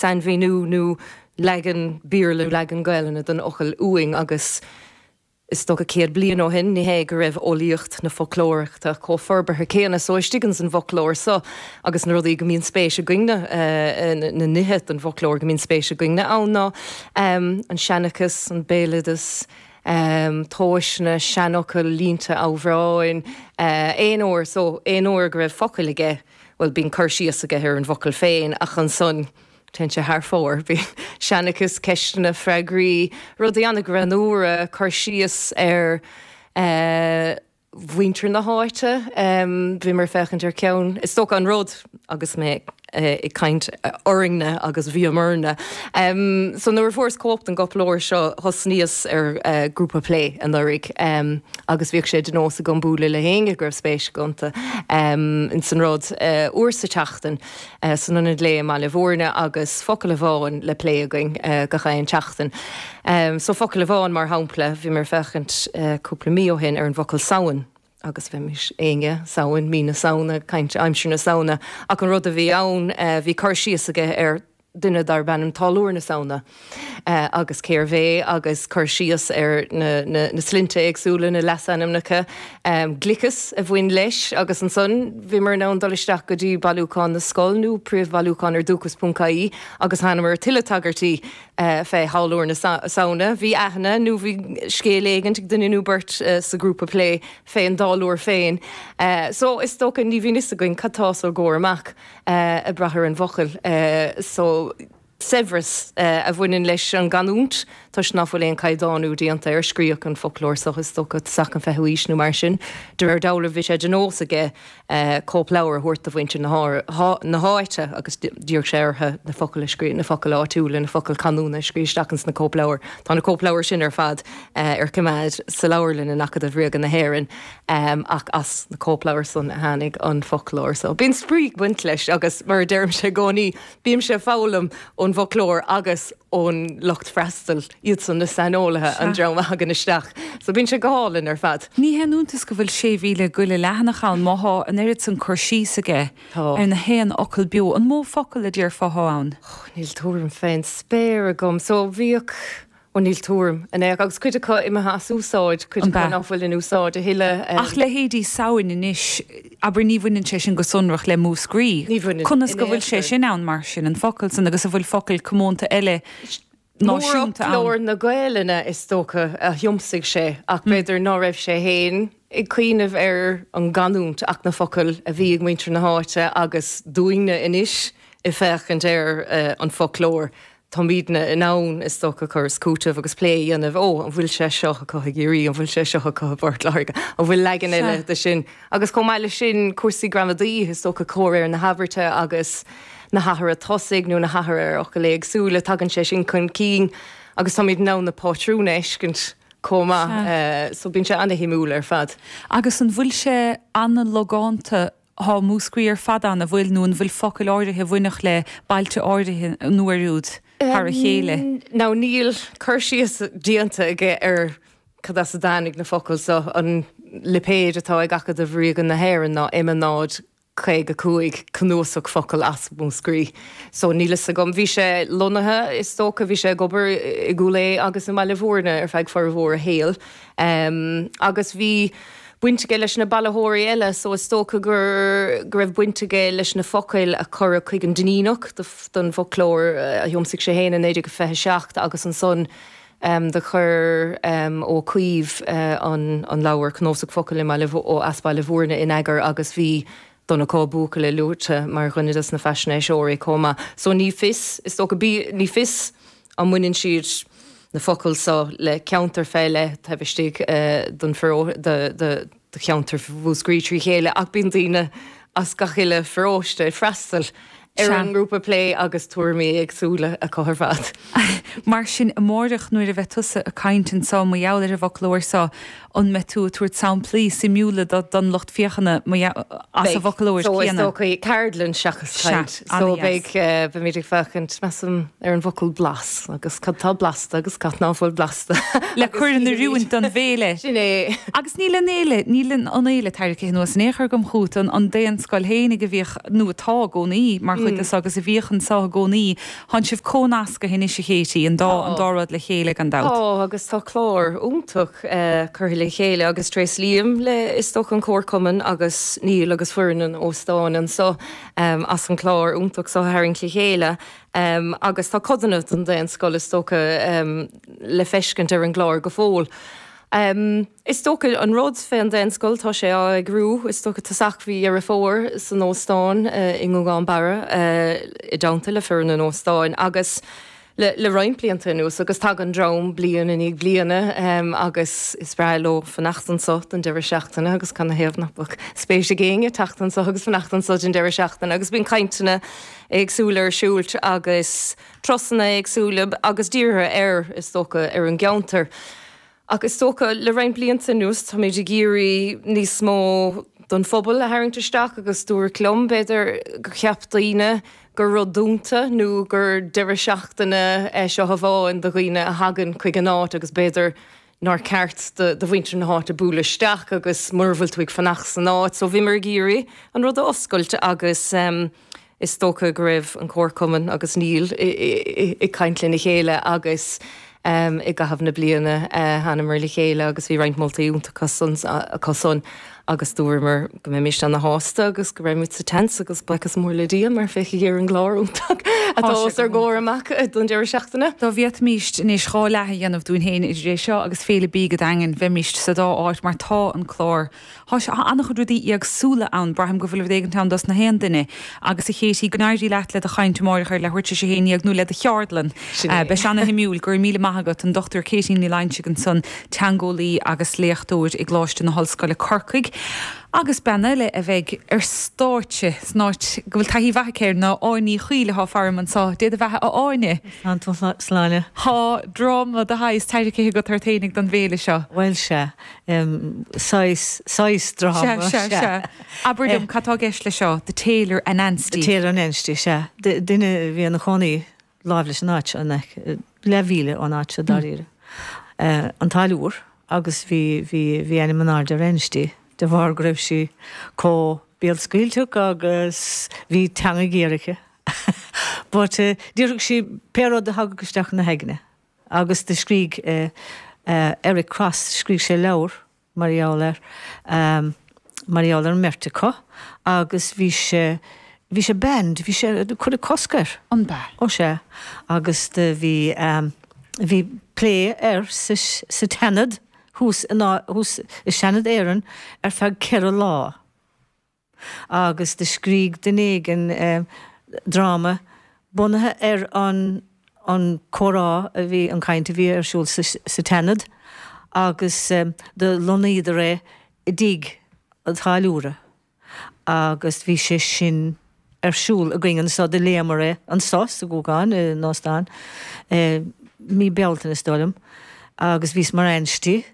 Sainmhíniú nó leagan Béarla, leagan Gaelainne den fhocal uain agam is dócha céad bliain ó shin, ní hé go raibh eolaíocht na foclóireachta chomh forbartha céanna. So istigh ins an bhfoclóir so agus na rudaí go mbíonn spéis againn-ne, na nithe don bhfoclóir go mbíonn spéis againn-ne ann ná an seanchas, an béaloideas, tomhaiseanna, seanfhocail, línte, amhráin, aon uair, so aon uair go raibh focal aige, bhuel, bíonn cur síos aige ar an bhfocal féin ach ansan téann sé thar fóir. Bíonn seanchas, ceisteanna, freagraí, rudaí an-ghreannúra, cur síos ar eh, mhuintir na háite. Em, bhí mé ag féachaint ar cheann, is dócha an rud agus mé ag caint orainne agus bhíomarna. So nuair a fuaireas cóip den gcóipleabhar seo thosnaíos ar grúpa plé anuraidh agus bhíodh sé de nós agam bualadh le héinne go raibh spéis acu ins an rud. Uair sa tseachtain san Ionad Lae i mBaile Mhúirne agus focal amháin le plé againn gach aon tseachtain. So focal amháin mar shampla bhíomar ag féachaint cúpla mí ó shin ar an bhfocal 'Samhain'. agus bheimis ag déanamh, Samhain, mí na Samhna, caint aimsir na Samhna, ach an rud a bhí ann, bhí cur síos aige ar duine darb ainm Táilliúir na Samhna agus cérbh é agus cur síos ar na na sloinnte éagsúla, na leasainmneacha, gliceas a bhain leis agus ansan bhíomar in ann dul isteach go dtí Bailiúchán na Scol nó príomhbhailiúchán ar Dúchas ponc ie agus thánamar ar tuilleadh tagairtí fé Tháilliúir na Samhna. Bhí aithne nó bhí scéal éigint ag duine nó beirt sa ghrúpa plé fén dTáilliúir féin. So is dócha ní bhíonn fhios againn cad tá os ár gcomhair amach ag brath ar an bhfocal. So saibhreas a bhaineann leis an gcanúint toisc nach bhfuil aon caighdeánú déanta air. Scríobhadh an foclóir so is dócha sa 20ú aois nó mar sin. De réir dealraimh bhí sé de nós aige cóipleabhar a thabhairt do mhuintir na háite agus d'iarr sé orthu na focail a scríobh, na focail áitiúla, na focail canúna a scríobh isteach ins na cóipleabhair. Tá na cóipleabhair sin ar fad ar coimeád sa leabharlann in Acadamh Ríoga na hÉireann ach as na cóipleabhair san a tháinig an foclóir so bíonn spraoi ag baint leis agus mar a deirimse i gcónaí bímse ag foghlaim ón bhfoclóir agus ón lucht freastail. Iadsan na saineolaithe, an dream a thagann isteach. So bíonn sé go hálainn ar fad. Ní haon iontas go bhfuil 6,000 go leith leathanach ann má thá an oiread san cur síos aige ar na haon fhocal beo. An mó focal a déarfá thá ann? Oh, níl tuairim fén spéir agam. So bhíodh, oh níl tuairim, an ea? Agus cuid acu imithe as úsáid, cuid acu nach bhfuil in úsáid a thuilleadh. Ach leithéidí Samhain anois, abair, ní bhaineann sé sin go sonrach le Múscraí. Ní bhaineann. Conas go bhfuil sé sin ann mar sin, an focal san, agus an bhfuil focail comónta eile náisiúnta ann. Mórfhoclóir na Gaelainne, is dócha, a thiomsaigh sé, ach b'fhéidir ná raibh sé féin ag cuimhneamh ar an gcanúint ach na focail a bhí ag muintir na háite agus dúinne anois ag féachaint ar an bhfoclóir táimidne in ann, is dócha, cur is cúiteamh agus plé a dhéanamh, 'Ó, an bhfuil sé seo acu i gCiarraí, an bhfuil sé seo acu i bPort Láirge, an bhfuil leagan eile de sin? Agus chomh maith leis sin, cúrsaí gramadaí, is dócha comhréir na habairte agus na hathruithe tosaigh nó na hathruithe ar fhocail éagsúla, tagann sé sin chun cinn agus táimid in ann na pátrúin a fheiscint chomh maith so bíonn sé ana-shuimiúil ar fad. Agus an bhfuil sé ana-logánta? Tá Múscraí ar fad ann, an bhfuil? Nó an bhfuil focail áirithe a bhainfeadh le bailte áirithe nó an bhfuil siad ar a chéile? Now níl cur síos déanta aige ar. Cad as a dtáinig na focail seo? An lipéid atá ag Acadamh Ríoga na hÉireann ná M 0 55, cnuasach focal as Múscraí. So níl fhios agam. Bhí sé lonnaithe is dócha, bhí sé ag obair i gCúil Aodha agus i mBaile Mhúirne ar feadh formhór a shaoil. Agus bhí baint aige leis na bailitheoirí eile so is dócha gur go raibh baint aige leis na focail a cuireadh chuig an Duinníneach don bhfoclóir a thiomsaigh sé fhéin i 1927 agus ansan Do chuir Ó Cuív an leabhar Cnósach Focal ó, as Baile Mhúirne in eagar agus bhí Donncha Ó Buachalla luaite mar dhuine de na faisnéiseoirí chomh maith. So ní fios, is dócha, ní fios an mbaineann siad, na focail so, le ceantar fé leith taobh istigh den, de cheantar Mhúscraí trí chéile ach bíonn daoine as gach uile pharóiste ag freastal ar an ngrúpa plé agus tuairimí éagsúla acu ar fad. Mar sin amáireach nuair a bheidh tusa ag caint anseo mar gheall ar an bhfoclóir seo an mbeidh tú ag tabhairt samplaí suimiúla don lucht féachana as an bhfoclóir céanna? Beidh, so is dócha ceardlann seachas caint. So beidh, beimid ag féachaint measaim ar an bhfocal blas agus cad tá blasta agus cad ná fuil blasta. le cur in oiriúint don bhféile. Sin é. Agus níl an fhéile, níl an fhéile tarraingthe anuas in aon chor agam chuin, an daonscoil fhéinig a bhíodh, nó atá i gcónaí, mar chuid de, agus a bhíodh anseo i gcónaí. Thánn sibh comhnasctha anois a Khatie, an dá, an dá rud le chéile gan dabht. Tá agus tá clár iontach curtha le chéile agus tréaslaím le, is dócha, an comharchumann agus Neil agus foireann an óstáin anseo as an chlár iontach seo a tharraingt le chéile. agus tá codanna den daonscoil is dócha le feiscint ar an gclár go fóill. Is dócha an rud fé an daonscoil tá sé á eagrú, is dócha tosach mhí Dheireadh Fómhair san óstán i nGúgán Barra i dteannta le foireann an óstáin agus le roinnt blianta anuas agus tagann dream bliain i ndiaidh bliana agus is breá leo fanacht anso don deireadh seachtaine agus canathaobh ná beadh spéis ag éinne teacht anso agus fanacht anso don deireadh seachtaine agus bíonn cainteanna éagsúil ar siúl agus turasanna éagsúla agus dírithe ar, is dócha, ar an gceantar. Ach is dócha, le roinnt blianta anuas, táimid ag iarraidh níos mó den phobal a tharraingt isteach agus dúradh liom, b'fhéidir, gur cheap daoine gur rud dúnta nó gur deireadh seachtaine é seo amháin do dhaoine a thagann chuig an áit agus b'fhéidir nár cheart do mhuintir na háite bualadh isteach agus mura bhfuil tú ag fanacht san áit. So bhíomar ag iarraidh an rud a oscailt agus is dócha go raibh an comharchumann agus Neil ag caint lena chéile agus i gcaitheamh na bliana thánamar le chéile agus bhí roinnt moltaí iontacha acusan. agus dúramar go mbeimis ana shásta agus go raibh muid sa tent agus buiochas mór le Dia mar féach ar an gclár iontach atá os ár gcomhair amach don deireadh seachtaine. Dá bhféadfaimíst anois dhá leath a dhéanamh dúinn féin idir é seo agus Féile Bídh an Daingin bheimíst sa dá áit mar tá an clár an-chuid rudaí éagsúla ann braithim go bhfuil rud éigin ann dos na haon duine agus a Chaití go n-éirí leat le do chaint amáireach ar leathuair tar éis a haon déag nó le do cheardlann beidh sé ana shuimiúil go raibh míle maith agat an Dr Caití Ní Loingsigh ansan teangeolaí agus léachtóir i gColáiste na hOllscoile Corcaigh agus bean eile a bheidh ar stáitse san áit go bhfuil taithí mhaith aici air ná Áine Ní Chuill atá faram anso, Dé do bheatha a Áine! Go mairir slán! Tá dráma de shaghas tairricithe agat ort fhéinig don bhféile seo. Bhuel sea. Saghas, saghas dráma, sea. Sea, sea, sea. Abair liom, cad tá i gceist leis seo, The Tailor Anansti? The Tailor Anansti, sea. Duine a bhí ina chónaí láimh leis an áit seo in aice, leathmhíle ón áit seo dáiríre, an Táilliúr agus bhí, bhí, bhí ainm in airde ar Anansti de bharr go raibh sí comh béalscaoilteach agus bhí teanga ghéar aici but eh déarfadh sí pé rud a thagadh isteach ina haigne agus do scrígh Eric Cross, scrígh sé leabhar, mar gheall air, mar gheall ar an mbeirt acu agus bhí sé, bhí sé banned, bhí sé, cuireadh cosc air. Ab ea? Ó sea. Agus do bhí, bhí plé air sa, sa tSeanad thuas in, thuas i Seanad Éireann ar feadh ceithre lá. agus do scrígh duine éigin dráma bunaithe ar an an comhrá a bhí, an caint a bhí ar siúl sa sa tSeanad agus do lonnaíodar é i dtigh an táilliúra agus bhí sé sin ar siúl againn anseo, do léamar é anseo sa Ghúgán, san óstán, i mí Bealtaine is dóigh liom agus bhíos mar Anansti.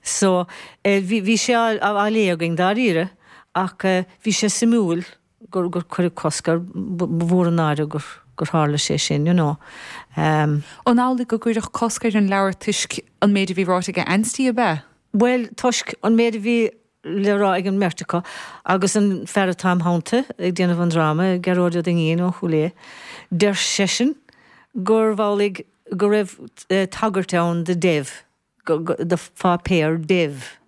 So, eh, bhí, bhí sé á, á, á léamh againn, dáiríre, ach eh, bhí sé suimiúil gur, gur cuireadh cosc air, ba, ba mhór an náire gur, gur tharla sé sin, you know. Em. An amhlaidh go gcuireadh cosc ar an leabhar toisc an méid a bhí ráite ag Ansty, ab ea? Bhuel, toisc an méid a bhí le rá ag an mbeirt acu, agus an fear atá im' theannta ag déanamh an dráma, Gearóid Ó Duinnín ó Chúil Aodha, deir seisean gurbh amhlaidh go raibh eh, tagairt ann do Dev, do pháipéar Dev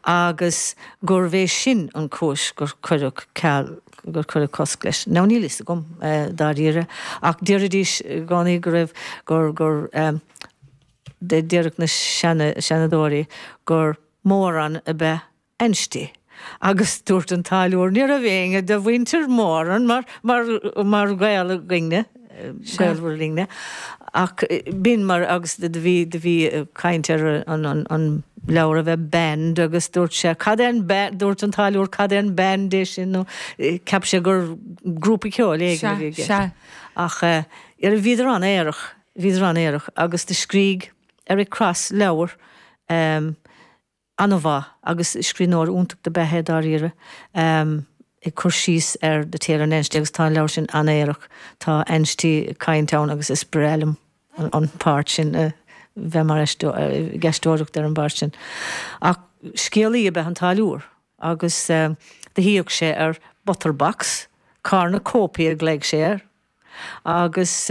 agus gurbh é sin an chúis gur cuireadh ceal, gur cuireadh cosc leis. Now níl fhios agam dáiríre ach déarfaidís i gcónaí go raibh, gur, gur eh déarfadh na seanadóirí gur moron ab ea Ansty. Agus dúirt an táilliúir, Ní raibh éinne de mhuintir Moran mar, mar, mar ghaol againn-ne, gaolmhar linn-ne, ach b'in mar, agus do bhí, do bhí caint ar an, an, an leabhar a bheith banned agus dúirt sé, Cad é an ba, dúirt an táilliúir, Cad é an band é sin nó cheap sé gur grúpa ceoil éigin a bhí i gceist. Ach eh, bhíodar an-aerach, bhíodar an-aerach agus do scrígh Eric Cross leabhar, em, An-mhaith, agus scríbhneoir iontach dob ea é dáiríre, ag cur síos ar The Tailor and Ansty agus tá an leabhar sin an-aerach. Tá Ansty ag caint ann agus is breá liom an páirt sin, bheith mar aisteoir, ag aisteoireacht ar an bpáirt sin. Ach scéalaí ab ea an Táilliúir agus do shuíodh sé ar butterbox, Cornucopia a ghlaoigh sé air, agus.